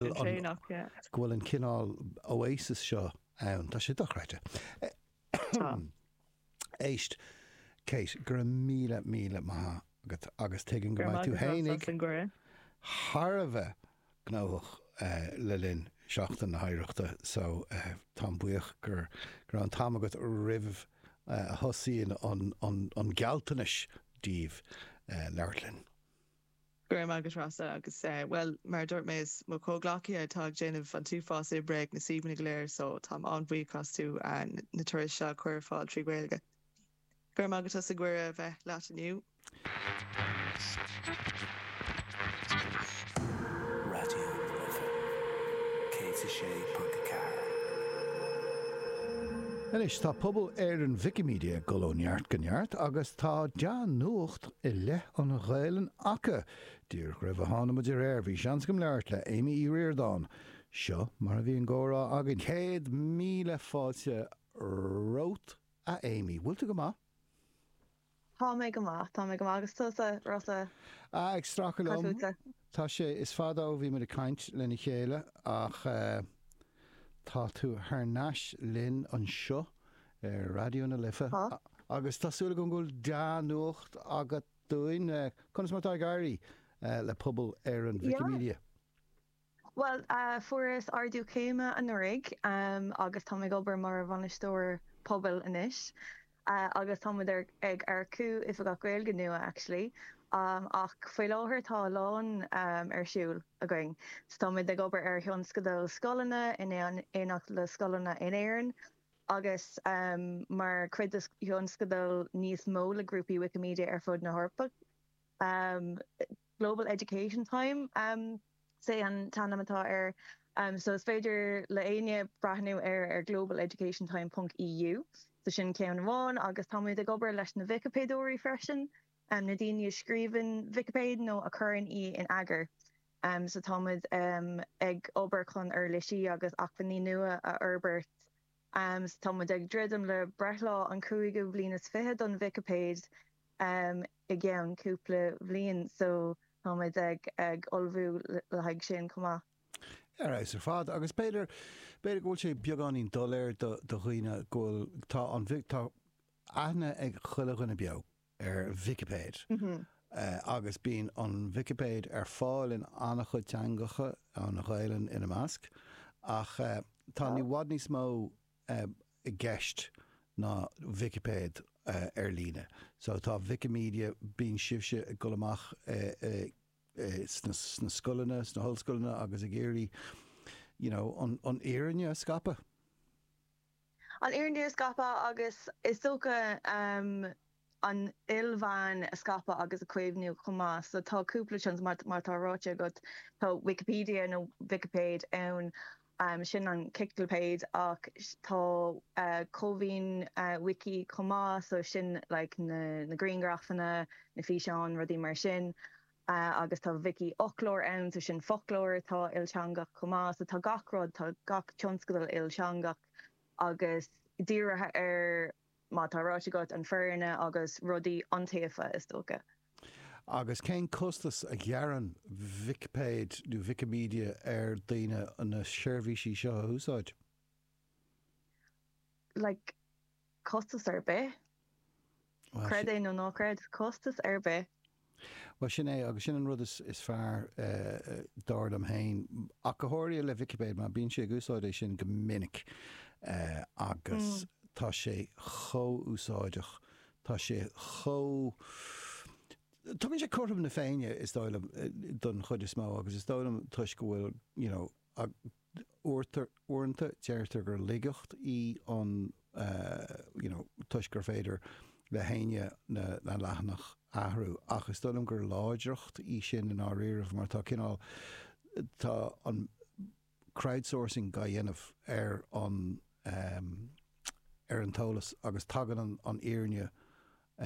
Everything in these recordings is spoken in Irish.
go bhfuil an cineál oasis seo ann. Tá sé dochreidte. Éist, Cáit, go raibh míle, míle maith agat agus tuigim go mbeidh tú féin ag thar a bheith gnóthach le linn Seachtain na hOidhreachta so táim buíoch go raibh an t-am agat roimh a thosaíonn an gealltanas duit labhairt linn. Go raibh maith agat, a Rossa agus, bhuel, mar a dúirt mé, is iad mo chomhghleacaithe atá ag déanamh an t-uafás oibre ag na suíomhanna go léir so táim an-bhuíoch díobh as na turais seo a chur ar fáil trí Ghaeilge. Go raibh maith agat as an gcuireadh a bheith leat inniu. Raidió na Life 106.4. Anois tá pobal Éireann Wikimedia ag dul ó neart go neart agus tá dea-nuacht i leith an Ghaelainn acu. Díreach roimh a tháinig muid ar aer, bhí seans agam labhairt le Amy Uí Riordáin. Seo mar a bhí an comhrá againn. Céad míle fáilte romhat, a Amy. Bhfuil tú go maith? Tá mé go maith, tá mé go maith. Agus tusa, Rossa? Ah, ag stracadh liom. Cad fútsa? Tá sé, is fada ó bhí muid ag caint lena chéile ach tá tú thar n-ais linn anseo ar Raidió na Life agus tá súil agam go bhfuil dea-nuacht agat dúinn. Conas mar atá ag éirí le pobal Éireann Wikimedia? Bhuel, fuaireas ardú céime anuraidh agus táim ag obair mar bhainisteoir pobail anois. agus tá muid ag earcú oifigeach Gaeilge nua actually ach faoi láthair tá a lán ar siúl againn. So tá muid ag obair ar thionscadal scoileanna in éineacht le scoileanna in Éirinn agus mar chuid de thionscadal níos mó le grúpaí Wikimedia ar fud na hEorpa. Global education time is ea an t-ainm atá air so is féidir le éinne breathnú air ar global education time ponc EU. So sin ceann amháin agus táimid ag obair leis na Vicipéadóirí freisin, na daoine a scríobhann Vicipéid nó a chuireann í in eagar. So táimid ag obair chun uirlisí agus acmhainní nua a fhorbairt Am, tá muid ag druidim le breithlá an chúigiú bliain is fiche don Vicipéid i gceann cúpla bhliain so tá muid ag ullmhú le haghaidh sin chomh maith. Ar fheabhas ar fad. Agus b'fhéidir, b'fhéidir go bhfuil sé beagáinín doiléir do dhaoine go bhfuil, tá an, tá aithne ag chuile dhuine beo, ar Vicipéid agus bíonn an Vicipéid ar fáil in an-chuid teangacha, an Ghaelainn ina measc, ach tá i bhfad níos mó i gceist ná Vicipéid ar líne. So tá Wikimedia, bíonn sibhse ag dul amach sna scoileanna, sna hollscoileanna agus ag iarraidh, you know, an fhírinne a scaipeadh. an fhírinne a scaipeadh agus, is dócha, na hilmheáin a scaipeadh agus a chaomhnú chomh maith. So tá cúpla tionscadal, mar mar atá ráite agat. Tá Wikipedia, nó Vicipéid, ann, sin an chiclipéid, ach tá Comhaoin Wiki chomh maith, so sin like na grianghrafanna, na físeáin, rudaí mar sin. a agus tá Vicífhoclóir ann, so sin foclóir atá ilteangach chomh maith, so tá gach rud, tá gach tionscadal ilteangach agus dírithe ar, mar tá ráite agat, an fhírinne agus rudaí iontaofa, is dócha. Agus cén costas a ghearrann Vicipéid nó Wikimedia ar daoine na seirbhísí seo a úsáid? Like, costas ar bith. Creid é nó ná creid, costas ar bith! Bhuel, sin é, agus sin an rud is fearr, dar liom féin, ach go háirithe le Vicipéid, mar bímse ag úsáid é sin go minic agus tá sé chomh úsáideach, tá sé chomh. tugann sé cothrom na Féinne, is dóigh liom, don chuid is mó, agus is dóigh liom toisc go bhfuil, you know, Ach uaireanta deirtear gur laigeacht í an you know toisc gur féidir le héinne na na leathanach a athrú ach is dóigh liom gur láidreacht í sin i ndáiríribh mar tá cineál tá an crowdsourcing dhá dhéanamh ar an ehm ar an t-eolas agus tagann an an fhírinne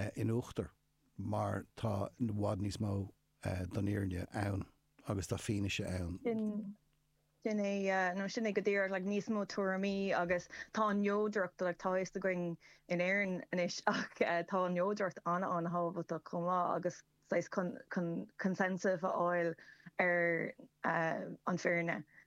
eh in uachtar mar tá i bhfad níos mó don fhírinne ann agus tá fianaise ann. Sin é, nó sin é go díreach, like, níos mó tuairimí agus tá an neodracht, like, tá a fhios againn in Éirinn anois ach tá an neodracht an-an-thábhachtach chomh maith agus saghas chun consensus a fháil ar an bhfírinne.